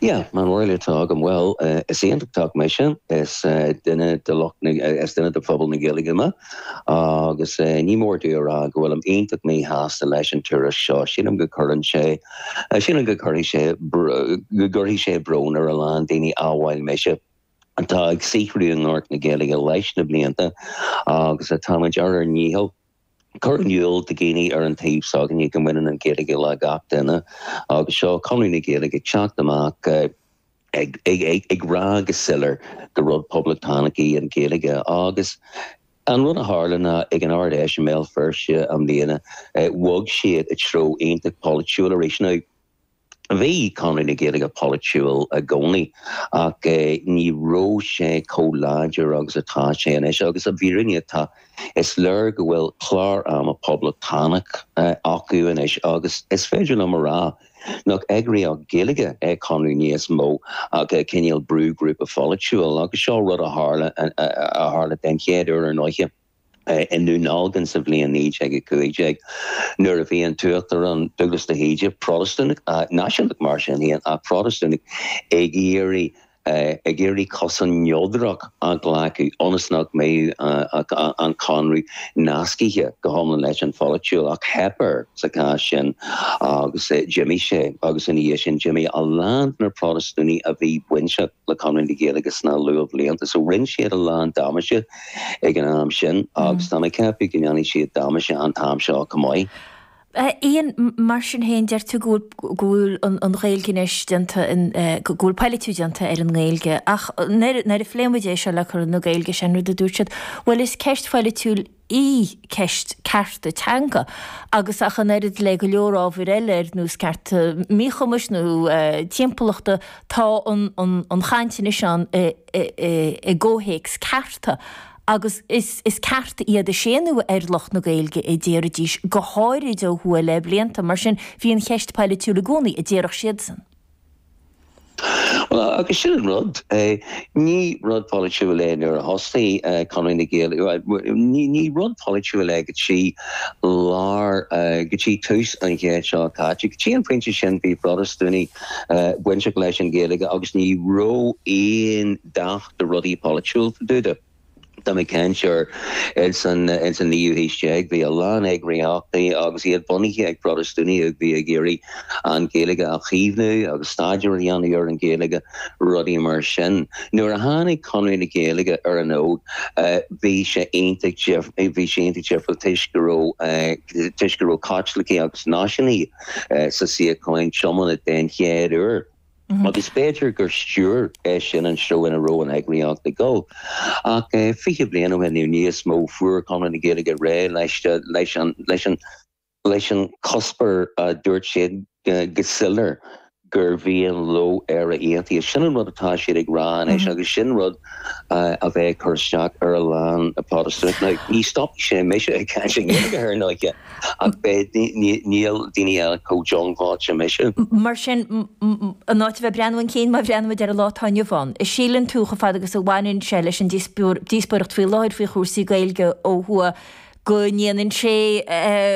Yeah, mar is eol duit, tá agam, bhuel, is Aontachtach mise, is duine de lucht na, is duine de phobal na Gaeilge mé, agus ní mór dom a rá go bhfuilim iontach míshásta leis an turas seo. Sílim go gcuireann sé, sílim go gcuirfidh sé, go gcuirfidh sé brón ar a lán daoine amhail mise atá ag saothrú i ngort na Gaeilge leis na blianta agus atáimid ar ár ndícheall cur in iúl do dhaoine ar an taobh s'againne go mbaineann an Ghaeilge le gach duine agus seo Conradh na Gaeilge ag teacht amach ag rá go soiléir gur rud poblachtánach í an Ghaeilge agus an rud a tharla ná ag an Ard-Fheis i mBéal Feirste i mbliana bhog siad i treo aontacht polaitiúil arís. Now. Bhí Conradh na Gaeilge polaitiúil i gcónaí ach ní raibh sé chomh láidir agus atá sé anois agus, i bhfírinne, tá. Is léir go bhfuil clár ama poblachtánach acu anois agus is féidir liom a rá nach eagraíocht Ghaeilge é Conradh níos mó ach cineál brúghrúpa polaitiúil agus seo rud a tharla, a tharla den chéad uair ar ndóighe. i nDún Dealgan sa bhliain 1915, nuair a bhí an tUachtarán, Dúglas de hÍde, Protastúnach, náisiúnach mar sin féin, ach Protastúnach, ag iarraidh, ag iarraidh cosán neodrach a ghlacadh ionas nach mbeadh an Conradh nascaithe go hiomlán leis an pholaitíocht. Ach theip air sa chás sin agus d'imigh sé, agus ina dhiaidh sin d'imigh a lán de na Protastúnaigh a bhí bainteach. le Conradh na Gaeilge sna luathbhlianta. So rinne siad a lán damáiste ag an am sin agus tá mé ag ceapadh go ndéanfaidh siad damáiste an t-am seo chomh maith. Ian, Mar sin féin, deir tú go bhfuil, go bhfuil an Ghaeilge anois déanta in, go bhfuil polaitiú déanta ar an nGaeilge. Ach nuair, nuair a phléimid é seo le Conradh na Gaeilge, is é an rud a dúirt siad, bhuel is ceist pholaitiúil, í, ceist cearta teanga, agus ach an oiread le go leor ábhar eile ar nós cearta míchumais nó timpeallachta, tá an chaint anois ann i gcomhthéacs cearta, agus is cearta iad, a séanadh ar lucht na Gaeilge a déarfaidís, go háirid ó thuaidh le blianta. Mar sin, bhí an cheist polaitiúil i gcónaí, a déarfadh siadsan. Bhuel, agus sin an rud é. Ní rud polaitiúil é nuair a thosnaigh Conradh na Gaeilge, ní rud polaitiúil é go dtí lár, go dtí tús an chéid seo caite. Go dtí an pointe sin bhí Protastúnaigh bainteach leis an Ghaeilge agus ní raibh a dhath de rudaí polaitiúla fá dtaobh de. Tá mé ag caint ar ins an, ins an naoú haois déag. Bhí a lán eagraíochtaí agus iad bunaithe ag Protastúnaigh a bhí ag iarraidh an Ghaeilge a chaomhnú agus staidéar a dhéanamh ar an Ghaeilge, rudaí mar sin. Nuair a tháinig Conradh na Gaeilge ar an fhód bhí sé iontach dif, bhí sé iontach difriúil toisc go raibh, toisc go raibh Caitlicigh agus náisiúnaithe sa suíocháin tiomána den chéad uair. Agus b'fhéidir gur stiúir é sin an treo ina raibh an eagraíocht ag dul. Ach fiche bliain ó shin nó níos mó, fuair Conradh na Gaeilge réidh leis an chuspóir. Dúirt siad go soiléir gur mhian leo Éire aontaithe. Sin an rud atá siad ag rá anois agus sin rud a bheidh ag cur isteach ar a lán Protastúnach. Ní stopfaidh sé mise ag caint i nGaeilge thar ndóiche. Ach níl daoine eile chomh diongbháilte mise. Mar sin, in áit a bheith ag breathnú chun cinn má bhreathnaímid ar an lá atá inniu ann, an síleann tú, chomh fada agus a bhaineann sé leis an díospóireacht faoi láthair faoi chúrsaí Gaeilge ó thuaidh, go ndéanann sé,